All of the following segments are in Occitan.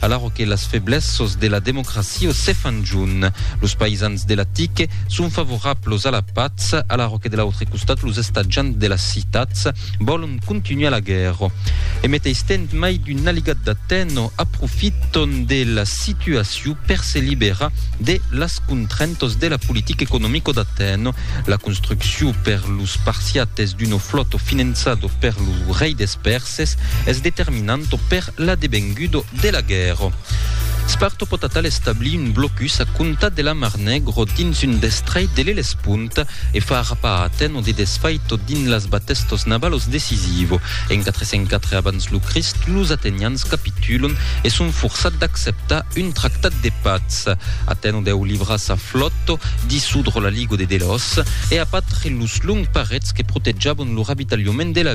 Alara que las feblessos de la democracia se fan junt, los païsans de la TIC son favorablos a la patz, alara que de l'autre costat los estatjants de las citats vòlon continuar la guèrra. E meteis tènt mai d'un aligat d'Atèno aprofiton de la situaciu per se liberar de las contraintos de la politica economico d'Atèno, la construcciu per los Spartiates d'uno flòto finançado per lo rei des Pèrses, Xerxes es determinanto per l'adevengudo de la guèrra. Sparto pòt atal establir un blocus a comptar de la Mar Negro dins un destrei de l'Elespont e far rapar Atèno de desfaito dins las batestos navalos decisivo. En 404 abans lo Crist, los atenians capitulon e son forçats d'acceptar un tractat de patz. Atèno deu livrar sa flòta, dissodre la Ligo de Delòs e apatre los longs parets que protejavon lo ravitalhament de la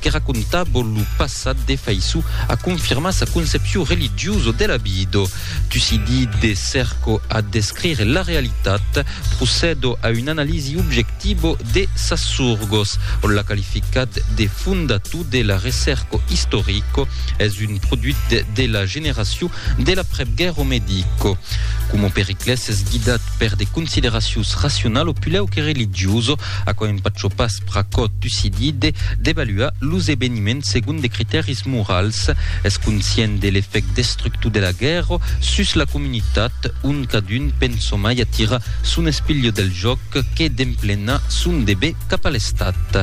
que racontabo lo passat de Faissou a confirmar sa concepcion religiosa de la vida. Tucidi de cerco a descrire la realitat, procedo a una analisi objectiva de sas sorgos. On l'a qualificat de fondator de la recerca istorica. Es un produit de la generacion de l'aprèpguèrra medica. Coma Periclès es guidat per de consideracions racionala pulèu que religiosa, aquò empachò pas Pr'aquò Tucidí de devaluar los eveniments segon de critèris morals. Es conscient de l'efèct destructor de la guèrra sus la comunitat, ont cadun pensa mai a tirar son espilho del jòc que d'emplenar son dever cap a l'Estat.